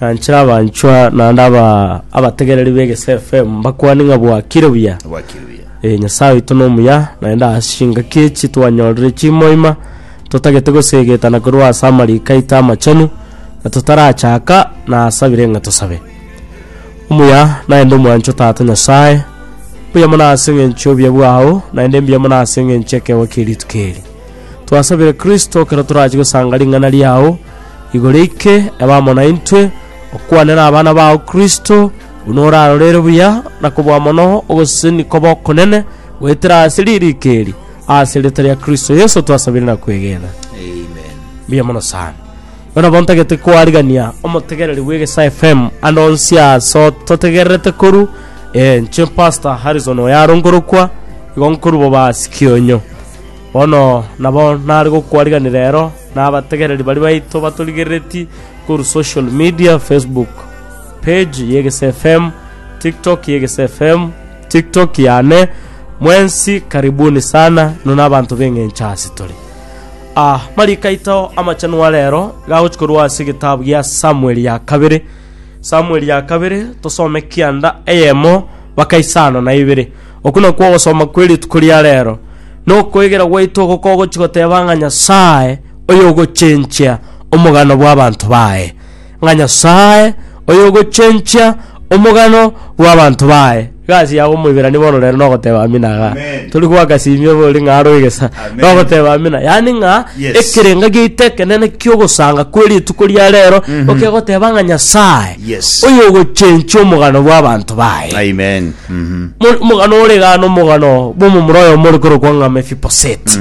Nainche nabanchwa naende aba abategereri b'Egesae FM mbakwane ng'a bwakire buya. Bwakire buya. Ee, Nyasae oito nomuya, naende ase chingaki echi twanyorire chimoima totagete goseegetana korwa ase amariko aito amachenu, na totarachaka nasabire ng'a tosabe. Omuya naende omwanchwa Tata Nyasae, mbuya mono ase eng'encho y'obuya bwao, naende mbuya mono ase eng'encho y'ekeegwa kie rituko eri. Twasabire Kristo ekero torache gosanga ring'ana riao, Igoro ike ebe amo naintwe, okwane nabana bao Kristo, buna orarorere buya na kobua mono ogosesenigwa kw'okonene goetera ase ririko eri. Ase erieta ria Kristo Yeso twasabire na kwegena. Amen. Mbuya mono sana. Bono nabo ntagete koarigania omotegereri bw'Egesa FM ande onsi ase ototegererete koru eh, inche Pastor Harrison oyaronkorokwa igo nkorwa Bobasi Kionyo. Bono nabo nare gokwariganera rero nabategereri baria baito batorigereretie korwa social media, Facebook page y'Egeso FM, TikTok y'Egeso FM, TikTok yane. Mwensi karibuni sana, inwe nabanto b'eng'encho ase tore. Ah, marika aito amachanwa rero gagochi korwa ase egetabu gia Samueli ya kabere. Samueli ya kabere tosome kianda eyemo bakaisana na ibere. Okwo nakwo ogosoma kwe rituko ria rero, na okoegera gwaito oko kogochia goteba ng'a Nyasae oyogochenchia omogano bw'abanto baye, ng'a Nyasae oyogochenchia omogano bw'abanto baye. Iga ase yago omoiberani bono rero nogoteba amina iga. Amen. Tori goaka simio iga ori ng'a aro egesa. Amen. Nogoteba amina. Yaani ng'a Yes. ekerenga giaito ekenene ki'ogosanga kwe rituko ria rero okegoteba ng'a Nyasae Yes. oyogochenchia omogano bw'abanto baye. Amen. Mo- omogano ore iga na omogano bw'omomura oyomo ore korokwa ng'a mefiboseti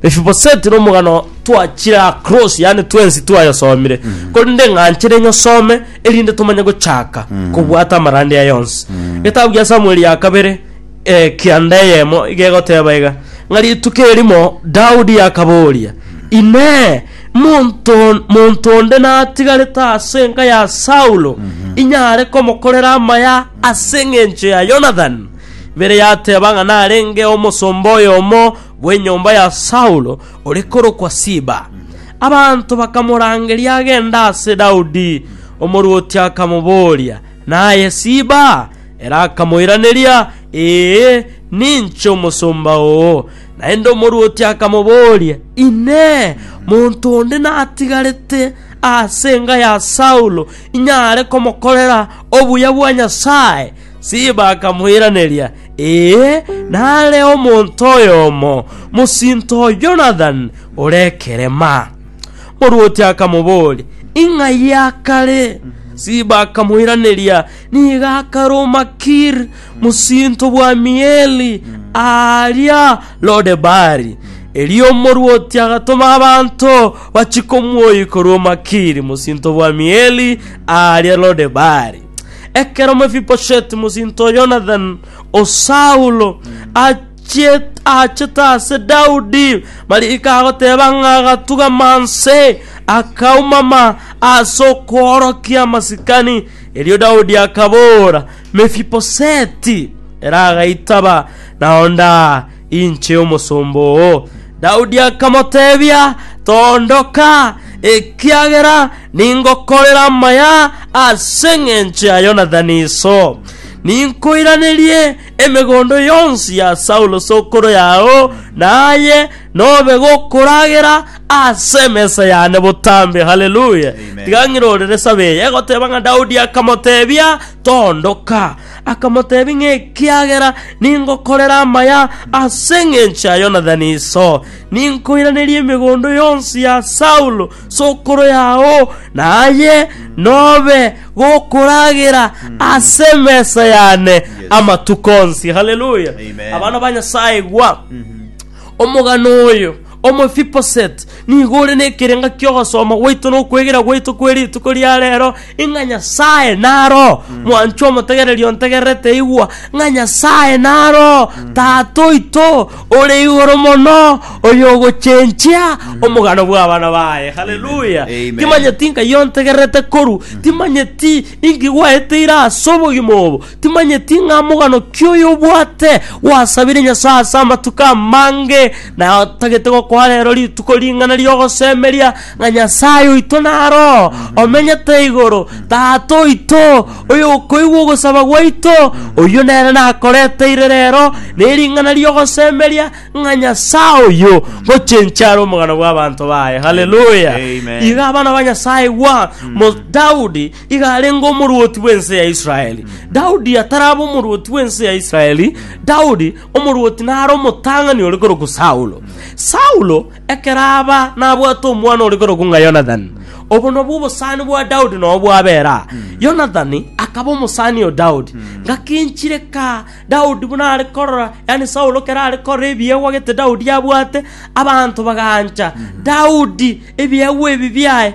mefiboseti na omogano twachire across yaani twensi twayosomire korende ng'anchere nyosome erinde tomanye gochaka kobwata amarande aya yonsi getabu gia samueli ya kabere eh, kianda eyemo iga egoteba iga ng'a rituko erimo daudi akaboria inee monto monto onde natigarete ase enka ya saulo inyare komokorera amaya As'engencho ya Yonathan, Bere yateba ng'a narenge omosomba oyomo bw'enyomba ya Saulo, ore korokwa Siba. Abanto bakamorangeria agende ase Daudi. Omorwoti akamoboria, Naye Siba? Ere akamoiraneria, Ee, ninche omosomba oo. Naende omorwoti akamoboria, Inee! Monto onde natigarete as'enga ya Saulo inyare komokorera Obuya bwa Nyasae! Siba akamoiraneria, Ee, nare omonto oyomo, mosinto o Jonathan, ore ekerema. Morwoti akamobooria, Ing'ai akare? Siba akamoiraneria, Nigo akare o Makir, mosinto bw'Amieli, aaria Lodebari. Erio omorwoti agatoma abanto bachie komoyia korwa o Makir, mosinto bw'Amieli, aaria Lodebari. Ekero Mefibosheti mosinto o Yonathan o Saulo achiet- aachete ase Daudi, mariga agoteba ng'a agatugama inse, akaumama ase okoorokia amasikani. Erio Daudi akaboora, Mefibosheti! Ere agaitaba, Naonda. Inche omosomba oo. Daudi akamoteebia, Toondoka, ekiagera ningokorera amaya ase engencho ya Yonathani iso. Ninkoiranerie emegondo yonsi ya Saulo sokoro yao, na aye nobe gokoragera ase emesa yane botambe. Haleluya! Tiga ng'irorere sabe eye egoteeba ng'a Daudi akamoteebia, Toondoka. Akamotebia ng'a, Ekiagera ningokorera amaya ase engencho ya Yonathani iso, ninkoiranerie emegondo yonsi ya Saulo sokoro yao, naye nobe gokoragera ase emesa yane amatuko onsi. Haleluya! Amen. Abana ba Nyasaye, igwa omogano oyo Omofiposet nigo ore nekerenga ki'ogosoma gwaito na okwegera gwaito kwe rituko ria rero, ing'a Nyasae naro mwanchwa omotegereri ontegererete igwa, ng'a Nyasae naro Tata oito ore igoro mono, oyogochenchia omogano bw'abana baye. Haleluya! Amen. Timanyeti ng'ai ontegererete koru, timanyeti inki gwaeteire as'obogima obo, Timanyeti ng'a mogano ki oyo obwate gwasabire Nyasae ase amatuko amange, na otagete gokoa rero rituko ring'ana ri'ogosemeria ng'a Nyasae oito naro omenyete igoro, Tata oito, oyokoigwa ogosaba gwaito, oyio nere nakoreteire rero nering'ana ri'ogosemeria ng'a Nyasae oyio ngochenchia are omogano bw'abanto baye. Haleluya! Amen. Iga abana ba Nyasae igwa, mo Daudi iga arenge omorwoti bw'ense ya Israeli. Daudi ataraba omorwoti bw'ense ya Israeli, Daudi omorwoti nare omotang'ani ore korokwa Saulo. Saulo ekero aba nabwate omwana ore korokwa ng'a Yonathani. Obo nabwo obosani bwa Daudi nobo bwabera. Yonathani akaba omosani o Daudi. Ngakinchire ka Daudi buna are korora, yani Saulo kera are korora ebiegwa gete Daudi abwate, abanto bagaancha Daudi ebiegwa ebi biaye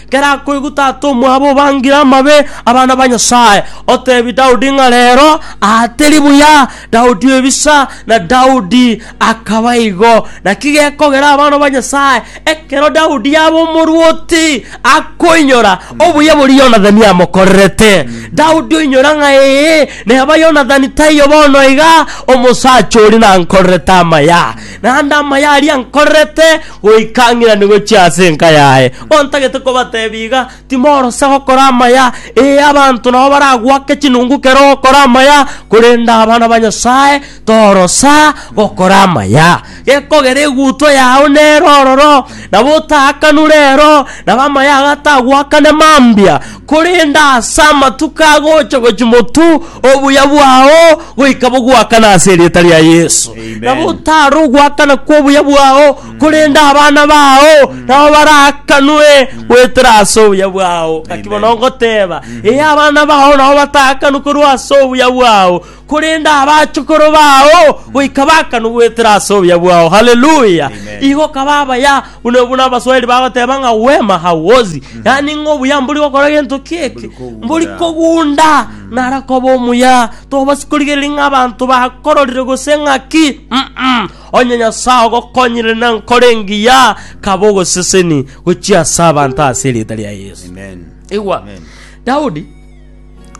Ekero akoigwa tata omwabo obangire amabe abana ba Nyasae, oteebia Daudi ng'a reero aate ribuya Daudi ebisa, na Daudi akaba igo. Naki gekogera abana ba Nyasae, ekero Daudi yaba omorwoti, akoinyora obuya boria Yonathani amokorerete. Daudi oinyora ng'a ee, neba Yonathani taiyo bono iga, omosacha oria nankorerete amaya. naende amaya aria nkorerete goika ng'irani gochia ase enka yaye. Ontagete kobatebia iga, timorosa gokora amaya, ee, abanto nabo baragwake chinungu kere ogokora amaya, korende abana ba Nyasae torosa gokora amaya. Gekogera egutwa yao nere ororo, nabo otaakanwe rero, nabo amaya ago atagwakane mambia, Korende ase amatuko agocha gochia motu, obuya bwao goika bogwakane ase erieta ria Yesu. Amen. Nabo otare ogwakana kw'obuya bwao, korende abana bao nabo baraakanwe goetera ase obuya bwao. Ngaki Amen. bono ngoteba, ee abana bao nabo bataakanwe korwa ase obuya bwao, korende abachukuru bao goika bakanu goetera ase obuya bwao. Haleluya! Amen. Igo kaba abaya buna buna Abaswahili bagoteba ng'a wema hauozi, yaani ng'a obuya mbori gokora gento kieke, Mbori kogunda. mbori kogunda nara koba omuya. Tobasi korigereria ng'a abanto bakororire gose ng'aki. Mm-mm. Onye Nyasae ogokonyire na nkoro engiya, kaba ogoseseni gochia ase abanto ase erieta ria Yeso. Amen. Igwa, Amen. Daudi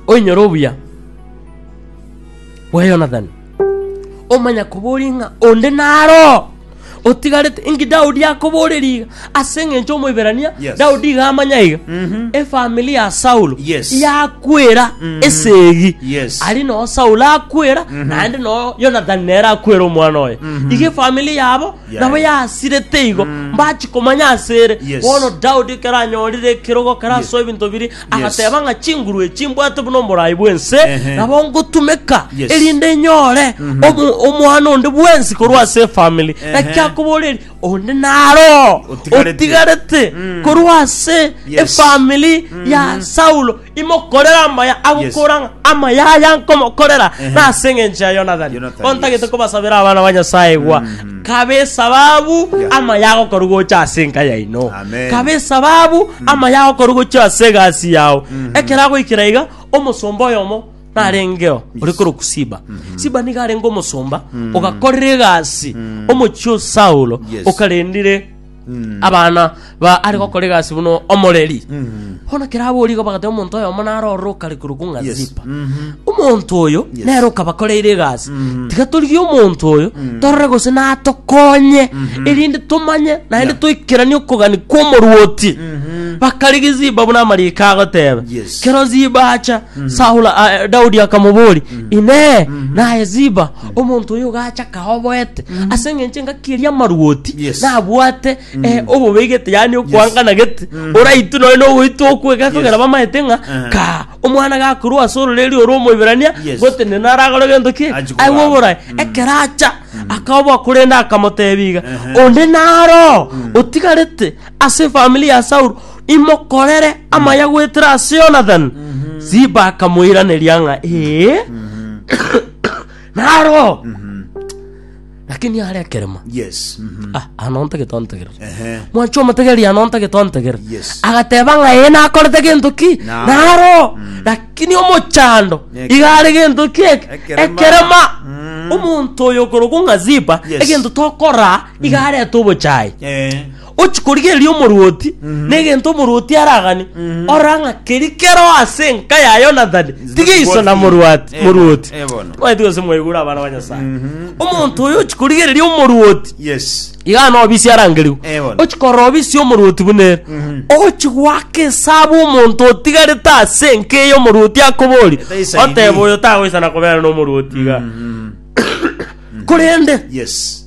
oinyore obuya bwa Yonathani, omanya koboria ng'a onde naroo otigarete. Inki Daudi akoboreria iga? Ase eng'encho Omoiberania, Yes. Daudi iga amanya iga, Mhm. efamili ya Saulo Yes. yakwera Mhm. esegi Yes. ari noo Saulo akwera naende noo Yonathani nere akwera omwana oye Mhm. iga efamili yabo Yeah. nabo yasirete igo mbachi komanya asere Yes. bono Daudi ekero anyorire ekerogo kerasoa ebinto biri Agateeba ng'a chinguru echi mbwate buna omoraai bw'ense Ehe. nabo ngotumeka Yes. erinde nyore omo- omwana onde bwensi korwa ase efamili Ehe. naki akoboreri onde naro Otigarete. otigarete korwa ase Yes. efamili ya saulo imokorere amaya agokora ng'a amaya aya nkomokorera Ehe. nase eng'encho ya yonathani Yonathani, bontagete yes. kobasabera abana ba nyasaye gwa Kabe esababu amaye agokora gocha ase enka yaino. Amen. Kabe esababu amaye agokora gocha ase egasi yao. Ekero agoikera iga omosomba oyomo narengeo ore koroku Siba. Siba niga arenge omosomba ogakorera egasi omochie o Saulo Yes. okarendire abana ba are gokora egasi buna omoreri bono kera abori iga bagateba omonto oyomo naro ororo okare korwa ko ng'a Yes. zipa Mhm. omonto oyo Yes. nere okabakoreire egasi Mhm. tiga torigie omonto oyo torore gose natokonye erinde tomanye naende toikeranie okogani kw'omoruoti bakarigi ziba buna amariko agoteba Yes. kero ziba acha saula ah, daudi akamobori inee naye ziba omonto oyo gacha kaoboete ase engencho engaki eria amaruoti Yes. nabwate eh, obobegete yani okwangana gete oraitu noe nogoitu okwe gakogera Yes. bamaete ng'a Eh. ka omwana gakorwa ase ororeri oro omoiberania Yes. gote nene aragore gento ki Achi kogamba. aiwe oborae ekeracha akaoboa korende akamotebiga Ehe. onde naro otigarete ase famili ya saulo imokorere amaya gwetera ase yonathan ziba akamoiraneria ng'a ee naro lakini are ekerema Yes. Mhm. Ah, ano ntagete ontegerere Ehe. mwancho omotegeri ano ntagete ontegerere Yes. agateba ng'a eye nakorete gento ki Na- naro lakini omochando Eke- igare gento ki eke- Ekerema. ekerema Mm. omonto oyo okorokwa ng'a zipa Yes. egento tokora igarete obochai Eh. Ochi korigereria omorwoti negento omorwoti aragane, orora ng'a keri kero ase enka ya Yonathani tigeiso na morwati- Eh, morwoti. eh, bono. Tibwati gose mwaigure abana ba Nyasae. Omonto oyo ochi korigereria omorwoti Yes. iga nobi isi arangerigwe Eh, bono. ochi korora obi isi omorwoti buna ere ochi gwaka esabu omonto otigarete ase enka eyo omorwoti akobori Etaisaini. oteba oyo tagoisana kobera nomorwoti iga korende Yes.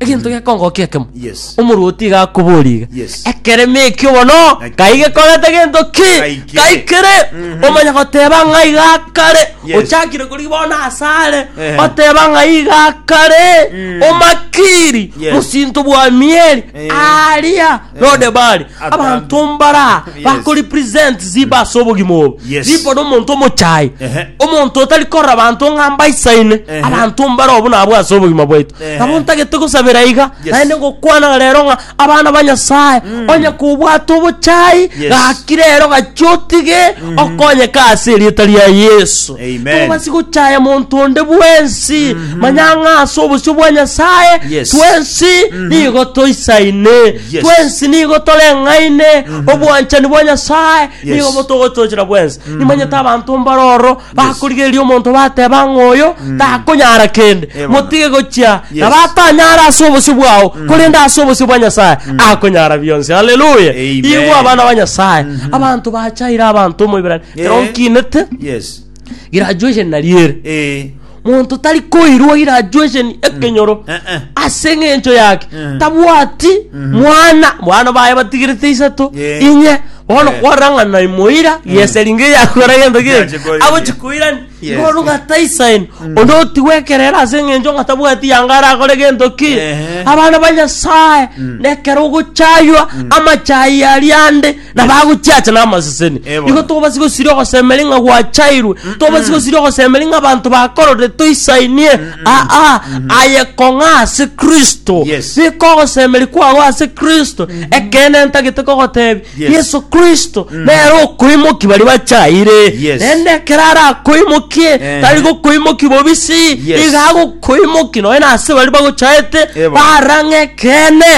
egento gekongoka ekemo Yes. omorwoti iga akoboria iga Yes. ekeremo ekio bono Naki- kai gekorete gento ki Kaikire. kaikire Mhm. omanye goteba ng'a iga kare Yes. ochakire kori bono asare Ehe. oteba ng'a iga kare Mm. omakiri Yes. mosinto bwa mieri Eh. aria nonde bare Ata- abanto mbara Yes. bakoripresent ziba ase obogima obo Yes. ziba nomonto omochayi Ehe. omonto otari korora abanto ng'a mbaisaine Ehe. abanto mbara obo nabwo ase obogima bwaito Ehe. nabo ntagete gosabera iga Yes. naende ngokwana rero ng'a abana ba nyasaye onye kobwate obochayi Yes. gaki rero gaki otige okonyeka ase erieta ria yesu Amen. Tobasi gochaya monto onde bwensi, manya ng'a ase obosio bwa Nyasaye Yes. twensi nigo toisaine, Yes. twensi nigo toreng'aine, obwanchani bwa Nyasaye Yes. nigo botogotochera bwensi. Nimanyete abanto mbaroro bakorigereria omonto bateba ng'a oyo takonyara kende, Eh, bono. motige gochia Yes. na batanyara ase obosio bwao, korende ase obosio bwa Nyasaye akonyara bionsi. Haleluya! Amen. Igwa abana ba Nyasaye, abanto bachaire abanto omoibera Ekero nkinete Yes. graduation nari ere Eh. monto tari koirwa graduation ekenyoro Eh, eh. ase eng'encho yake Mm. tabwati mwana mwana baye batigirete isato Yeah. inye bono Yeah. kwarang'ana imoira yeseringa yakora gento Yache geke koira. agochikoirani Yes. bono ng'ataisaini onde otigwekerera ase eng'encho ng'atabwati yanga arakore gento ki Ehe. abana ba nyasaye nekero ogochaywa amachai aria ande na bagochiacha namaseseni Ebono. igo tobasi gosiria ogosemeri ng'a gwachairwe tobasi gosiria ogosemeri ng'a abanto bakorore toisainie aa aye kong'a ase kristo Yes. bika ogosemeri kwao ase kristo ekeene ntagete kogotebi Yes. yesu kristo nere okoimoki bari bachaire Yes. rende ekero arakoimokie Ehe. tari gokoimoki bobisi Yes. iga agokoimoki nonya ase bari bagochaete Ebono. barang'e ekeene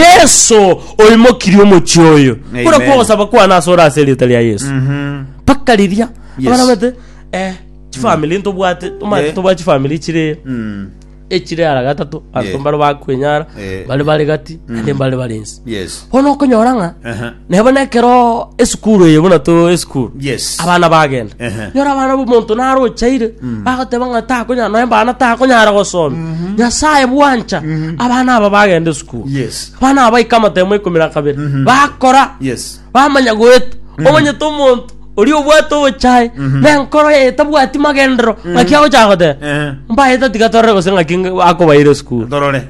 yesu oimokirie omochie oyo Amen. buna kw'ogosaba kwane ase ore ase erieta ria yesu Mhm. mpaka riria Yes. abana bete eh, chifamili ntobwate Yeah. omanyete tobwate chifamili chire Mm. echire ara gatato Yeah. anto mbare bakwenyara Yeah. bare bare gati ande mbare bare ensi Yes. bono okonyora ng'a Aha. nebo nekero esukuru eye buna to esukuru Yes. abana bagenda Ehe. nyora abana bomonto naro ochaire bagoteba ng'a takonyara noe mbana takonyara gosoma nyasaye bwancha abana aba bagenda esukuru Good. Yes. abana aba baika amatemo ikomi na kabere Mhm. bakora Yes. bamanya goeta omanyete omonto ori obwate obochae Mhm. na enkoro yaye tabwati magendero ng'aki agochaka goteba Eh. mbaeta tiga torore gose ng'aki ng- akobaire esukuru Dorore.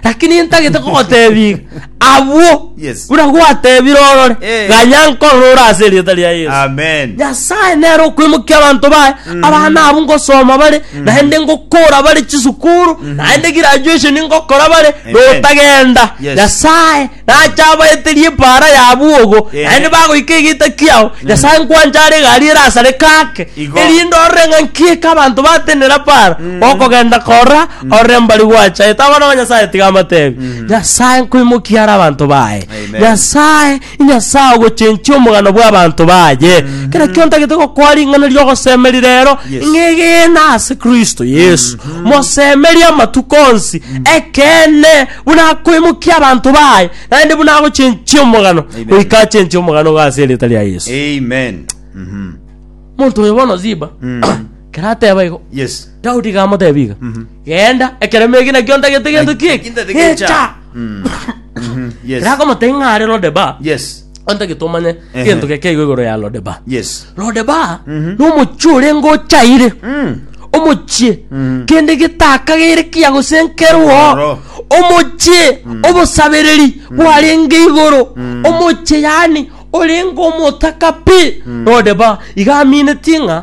lakini ntagete kogotebia abwo Yes. Buna gwatebire orore, Eh. ganya nkorora ore ase erieta ria Yesu. Amen. Nyasae nere okwemokia abanto baye abana abo ngosoma bare naende ngokora bare chisukuru naende graduation ngokora bare Amen. notagenda Yes. nyasae nacha abaeterie epara yabuogo Eh. naende bagoika egita kiao nyasae nkwanchare egari erasare kake Igo. erinde orore ng'a nkieka abanto batenera para okogenda kora Orore mbari gwachaete abana ba Nyasaye tiga amatebe. Nyasaye nkoimokia are abanto baye. Amen. Nyasaye inyasaye ogochenchia omogano bwa abanto baye. Kera kio ntagete gokoa ring'ana riogosemeri rero Yes. ng'egena ase Kristo Yesu. Mosemerie amatuko onsi ekeene buna akoimokia abanto baye naende buna agochenchia omogano Amen. goika achenchie omogano iga ase erieta ria Yesu. Amen. Mhm. Monto oyo bono Ziba kera ateba igo Yes. daudi gamotebi iga genda ekeremo eki nakio ntagete gento ki eki Ntagete gecha. gecha Mm. Mhm. Yes. rakomotei ng'are lodeba Yes. ontagete omanye Ehe. gento geke igo igoro ya lodeba Yes. lodeba Mhm. nomochie ore ngochaire Mm. omochie Mhm. kende getakagere kia gosenkerwa Oro. omochie obosabereri bwarenge igoro omochie yani orenge omotaka pi nodeba igamineti ng'a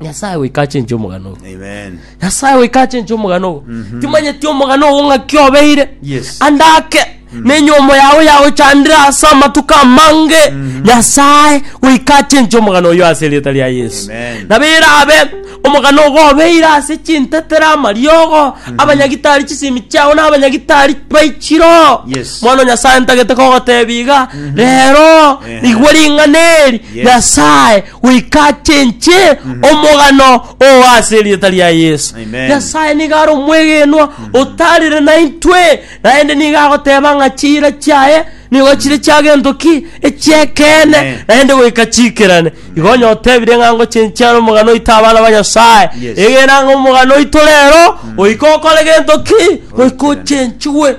nyasaye goika achenche omogano ogo Amen. nyasaye goika achenche omogano ogo timanyeti omogano ogo ng'aki obeire Yes. ande ake nenyomo yago yagochandire ase amatuko amange nyasaye goika achenche omogano oyo ase erieta ria yesu Amen. nabo erabe omogano ogo obeire ase chintetera amariogo abanyagitari chisemi chiao na abanyagitari baichiro Yes. bono nyasaye ntagete kogotebi iga rero Eh. igwe ring'ana eri Yes. nyasaye goika achenche omogano oo ase erieta ria Yeso. Amen. Nyasae nigo are omwegenwa otarire naintwe, naende nigo agoteba ng'a chiira chiaye nigo chire chia gento ki echi'ekeene, Amen. naende goika chiikerane. Igo onye otebire ng'a ngochenchia are omogano oito abana ba Nyasae, Yes. egena ng'a omogano oito rero goika okore gento ki? Goika ochenchigwe.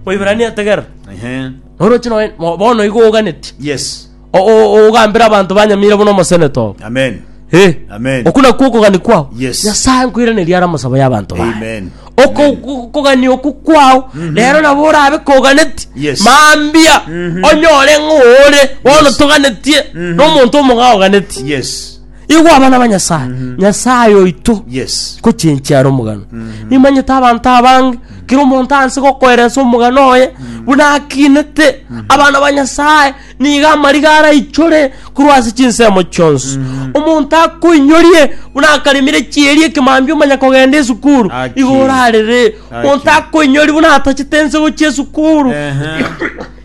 Moibrania tegerera. Ehe. Oroche noe- mo- bono igo oganetie. Yes. O- o- ogambere abanto banyamire buna omosenete obo. Amen. Eh. Amen. Oku nakwo okogania kwao Yes. nyasae nkoiraneria ara amasabo y'abanto baye Amen. Oko- Amen. oku- okogania oku kwao rero nabo orabe koganeti Yes. mambia onyore ng'ore bono toganetie nomonto omong'ao oganeti Yes. igo abana ba nyasae nyasae oito Yes. kochenchi ara omogano nimanyete abanto abange kera omonto anse gokoeresa omogano oye buna akinete abana ba nyasae Nigo amariga araichore korwa ase chinsemo chionsi. Omonto akoinyorie buna akaremire chieri ekemambia omanya kogenda esukuru, Aki. igo orarere. Aki. Omonto akoinyori buna atachete ense gochia esukuru, Ehe.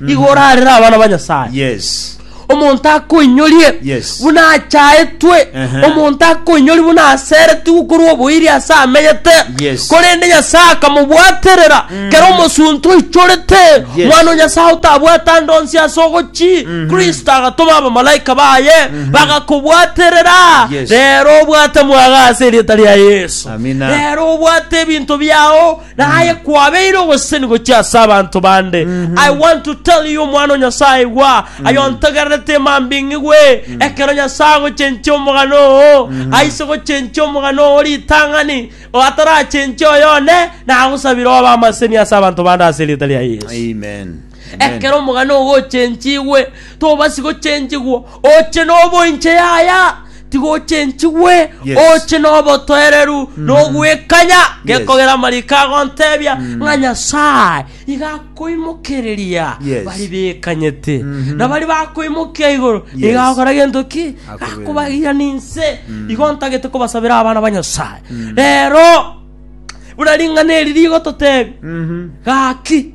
igo orarere abana ba Nyasaye. Yes. omonto akoinyorie Yes. buna achaetwe Ehe. omonto akoinyorie buna aseretigwe korwa oboiri ase amenyete Yes. korende nyasaye akamobwaterera Kera omosunte oichorete Yes. mwana o Nyasae otabwate ande onsi ase ogochi, Kristo agatoma abamalaika baye bagakobwaterera. Yes. Rero obwate mwaga ase erieta ria Yeso. Amina. Rero obwate ebinto biao naye kwabeire ogoseseni gochia ase abanto bande. I want to tell you mwana o Nyasae igwa ayo ntogererete mambing'igwe ekero Nyasae agochenchia omogano oo aise gochenchia omogano oo ritang'ani Otarachenche oyo one, nagosabire obe amaseni ase abanto bande ase erieta ria Yesu. Amen. Amen. Ekero omogano ogochenchigwe, tobasi gochenchigwa oche nobo inche yaya, tigochenchigwe Yes. oche nobotoereru nogwekanya gekogera amariko agontebia ng'a Nyasaye Nigo akoimokereria Yes. baria bekanyete, na baria bakoimokia igoro Yes. nigo agokora gento ki? Akobeera. Akobagia ninse. Igo ntagete kobasabera abana ba Nyasae. Rero buna ring'ana eri rigototebi, Mhm. gaki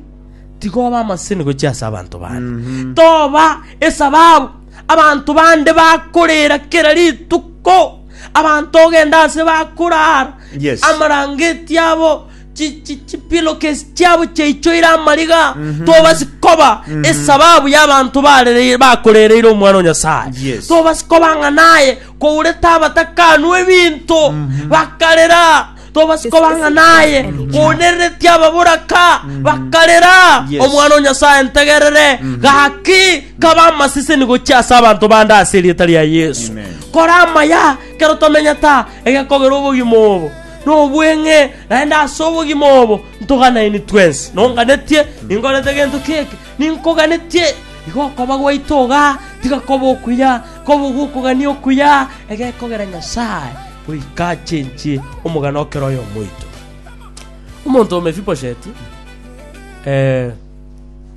tigoba amaseni gochia ase abanto bande toba esababu abanto bande bakorera kera rituko abanto ogenda ase bakorara Yes. amarangeti abo chi- chi- chipillowcase chiabo chiaichoire amariga tobasi koba esababu y'abanto barere- bakorereire omwana o nyasae Yes. tobasi koba ng'a naye kourete abatakanwa ebinto bakarera tobasi koba ng'a naye kounereretie ababoraka bakarera Yes. omwana o nyasaye ntegerere gaki kaba amaseseni gochia ase abanto bande ase erieta ria yesu Amen. kora amaya kero tomenyete egekogera obogima obo Nobweng'e naende ase obogima obo ntoganaini twensi. Nonganetie, ninkorete gento ki'eke, ninkoganetie. Igo okoba gwaito iga, tiga kobe okuya, kobe gw'okogania okuya, egekogera Nyasae, goika achenchie omogano o kera oyomo oito. Omonto o Mefibosheti, eh,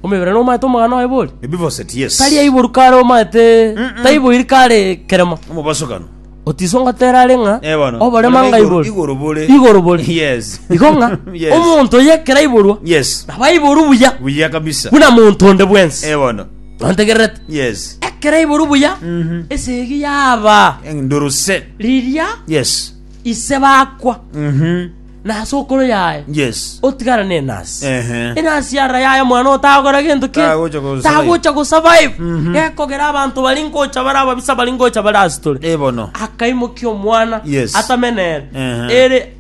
omebere nomaete omogano oye bori? Mephibosheth, yes. Tari aiboru kare omaete, taiboiri kare keremo. Omobosokano. Otiso ngotera are ng'a Eh, bono. oborema Oborema igoro- ngaiborwe igoro bore. igoro bore Yes. igo ng'a Yes. omonto oyo ekero aiborwa Yes. nabo aiborwe buya Buya kabisa. buna monto onde bwensi Eh, bono. ontegererete Yes. ekero aiborwe buya Mhm. esegi yaba Nduruse. riria Yes. ise bakwa Mhm. na ase okoro yaye Yes. otigara nenasi Ehe. enasi ara yaye omwana otagokora gento ki Tagocha go survive. tagocha go survive Mhm. gekogera abanto bari ngocha bare ababisa bari ngocha bare asitore Eh, bono. akaimokia omwana Yes. atamenere Ehe. ere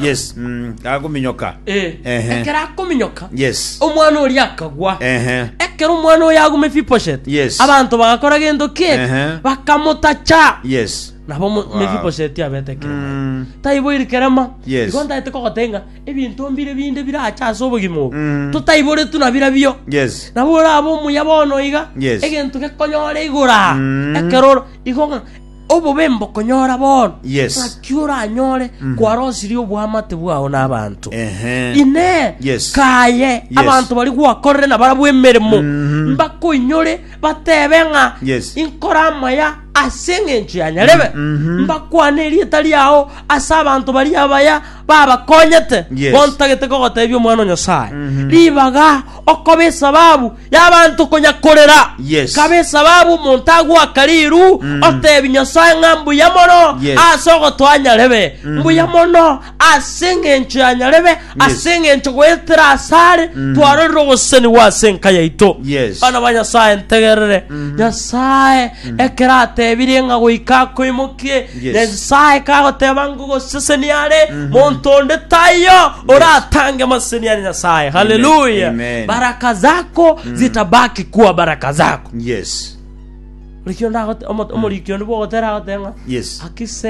Yes. Mm. Agominyoka. eh, Ehe. ekero akominyoka Yes. omwana oria akagwa Ehe. ekero omwana oyo agume fiposhet Yes. abanto bagakora gento ki Ehe. bakamotacha Yes. Nabo Wow. Mefibosheti abete kerema. Mm. Taiboiri kerema. Yes. Igo ntaete kogoteba ng'a ebinto mbire binde bire ache ase obogima obo. Mm. Totaiboretwe na bira bio. Yes. Nabo orabe omuya bono iga. Yes. Egento gekonyore igora. Mm. Ekeroro. Igo ng'a obobe mbokonyora bono. Yes. Naki oranyore kwarosirie obwamate bwao n'abanto. Ehe. Ine Yes. kaye abantu bari gwakorere na barabwo emeremo mbakoinyore batebe ng'a Yes. inkore amaya Ase engencho ya nyarebe, mbakwane erieta riao ase abanto baria abaya babakonyete Yes. bontagete kogotebia Omwana o Nyasae. Ribaga okoba esababu y'abanto konya korera. Yes. Kaba esababu omonto agoaka riru otebi Nyasae ng'a mbuya mono Yes. ase ogotoa nyarebe. Mbuya mono Ase engencho ya nyarebe, ase engencho goetera ase are twarorire ogosesenigwa ase enka yaito. Yes. Bana ba Nyasae ntegerere. Nyasae ekero atebirie ng'a goika akoimokie, Yes. Nyasae kagoteba ngogosesenia are, monto onde taiyo oratange amaseseni are Nyasae. Haleluya. Amen. Baraka zako zitabaki kuwa baraka zako. Yes. Buri kio ndagote- omo- omoriki onde bwogotera agoteba ng'a Yes. akise